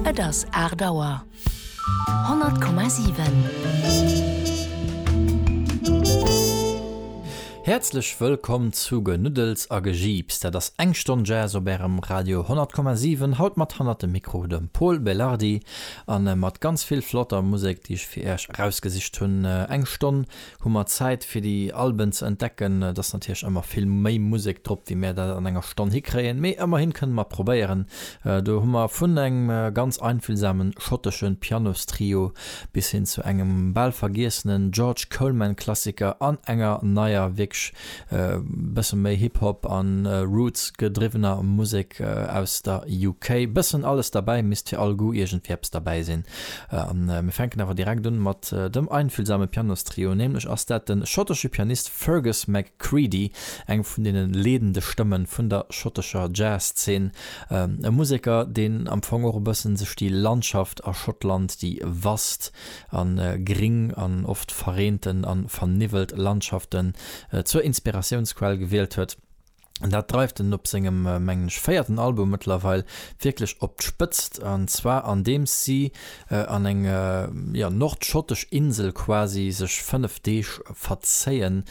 Et ass aacht Auer. 100,7. Häerzlech wëllkomm zu Genuddels a Gejiips. Dat ass eng Stonn Jazz op Ärem Radio 100,7. Haut mat hannert dem Mikro dem Pol Belardi a mat ganz vill flotter Musek, déi ech fir Äerch erausgesicht hunn. Eng Stonn Hu mer Zäit fir déi Alben ze entdecken? Et ass natierlech ëmmer vill méi Musek drop wéi mär dat an enger Stonn hikréien, mee ëmmerhin kënne mer probéieren. Do hu mer vun engem ganz einfühlsamen schottesche Pianostrio bis hin zu engem bal vergiessenen George Coleman-Klassiker an enger neier wierklech Bëssen méi Hip Hop an Roots gedriwwener Musek aus der UK. Bëssen alles derbäi, misst fir all Goût iergendwéi eppes derbäi sinn. An mir fänken awer direkt un mat dem einfühlsame Pianostrio. Nämlech ass dat den schottesche Pianist Fergus McCreadie, eng vun deenen leedende Stëmmen vun der schottescher Jazz-Zeen. E Museker deen am Fong och e bëssen sech déi Landschaft a Schottland, déi vast a gring an oft verreenten a verniwwelt Landschaften zur Inspiratiounsquell gewielt huet. Dat dreift en op sengem, mengen ech, véierten Album mëttlerweil wierklech op d'Spëtzt, an zwar andeems si an eng nordschottesch Insel quasi sech fënnef Deeg verzéien,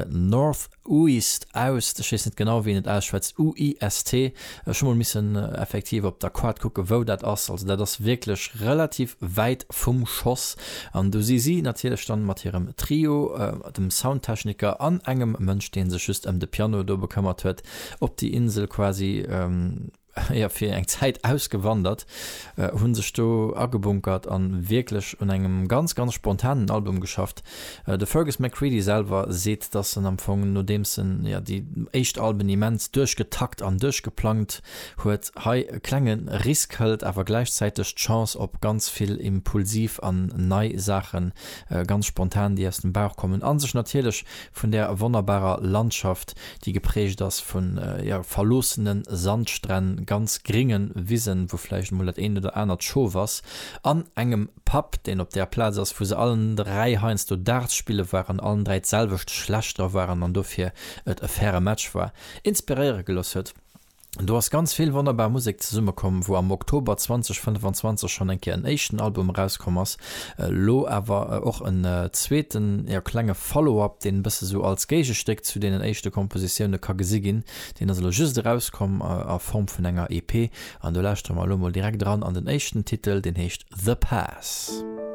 North. Uist, Aust, ech weess net genau wéi een et ausschwätzt, UIST, ech hu mol missen effektiv op der Quart kucken wou dat ass, also dat ass wierklech relativ wäit vum Schoss an do si si natierlech dann mat hirem Trio, dem Soundtechniker an engem Mënsch deen sech just ëm de Piano do bekëmmert huet, op déi Insel quasi. jo fir eng Zäit ausgewandert, hu sech do agebunkert a wierklech un engem ganz, ganz spontanen Album geschafft. De Fergus McCreadie selwer seet, datt en am Fong, nodeems en jo déi éischt Alben immens duerchgetakt an duerchgeplangt huet, hei e klenge Risk hëlt, awer gläichzäiteg d'Chance op ganz vill impulsiv an nei Saachen, ganz spontan, déi aus dem Bauch kommen a sech natierlech Vun där wonnerbarer Landschaft, déi geprägt ass vun, jo, verloossenen Sandstränn, ganz gringen Wisen, wou vläicht emol dat eent oder anert Schof ass, an engem Pub, deen op där Plaz ass, wou se allen dräi heiansdo Darts spille waren, allen dräi d'selwecht schlecht dra waren an dofir et e faire Match war, inspiréiere gelooss huet. Do ass ganz vill wonnerbar Musek zesummekomm, wou am Oktober 2025 schonn eng Kéier en éischten Album erauskomm ass, elo awer och en zweeten, jo, klenge Follow-up, deen e bësse sou als Géigestéck zu deenen éischte Kompositioune ka gesi ginn. Deen ass elo just erauskomm a Form vun enger EP an do lauschtere mer elo mol direkt eran an den éischten Titel, deen heescht The Pass.